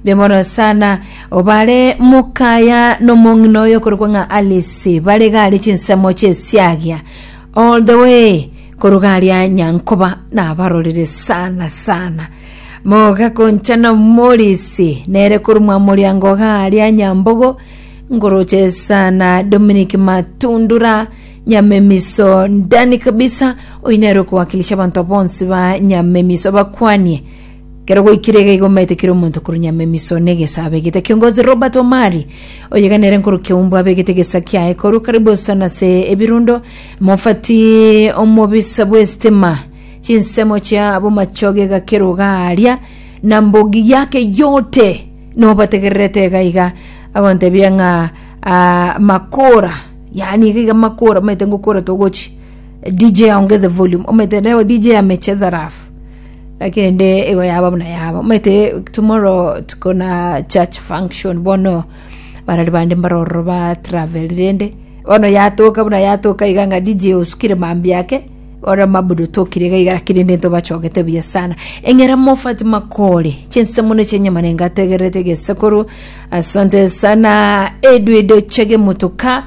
Mbuya mono sana. Obare mokaya nomong'ina oyo okorokwa ng'a Alice bare gare chinsemo chesiagia all the way korwa garia Nyankoba nabarorire sana sana mogakonchana omorisi nere korumwa moriango garia Nyambogo ngoroche sana Dominic Matundura Nyamemiso ndani kabisa oyo nere okowakilisha abanto bonsi ba Nyamemiso bakwanie Ekero gwaikire iga igo mbaete kera omonto korwa nyama emiso na egesa abegete. Kiongozi Robert Omari, oyo iga nere nkorukia Humbu abegete egesa kiaye korwa karibu sana ase ebirundo, mofati omobisa bw'estima, chinsemo chia bomachoge egakerwa iga aaria, na mbogi yake yote nobategererete iga iga agontebia ng'a ah, makora yaani iga iga makora omanyete ngokora togochi DJ aongeze volume omanyete leo DJ amecheza rafu Lakini ende igo yaba buna yaba omanyete tomorrow tukona church function bono barari bande mbare ororo ba travel rende bono yatoka buna yatoka iga ng'a DJ osukire mambia ake ore mabuda otokire iga iga lakini rende ntobachogete buya sana eng'era mofati makore chinsemo ne chinyama ne ngategererete gesekoro asante sana edwide ochege motoka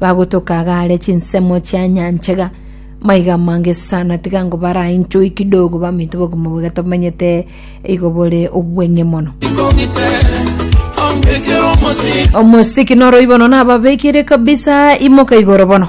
Bagotoka agaare chinsemo chia nyanchega maiga amange sana tiga ngo bara enchoi kidogo baminto bogima boiga tomenyete igo bore obweng'e mono omosiki noroibono nababekire kabisa imoka igoro bono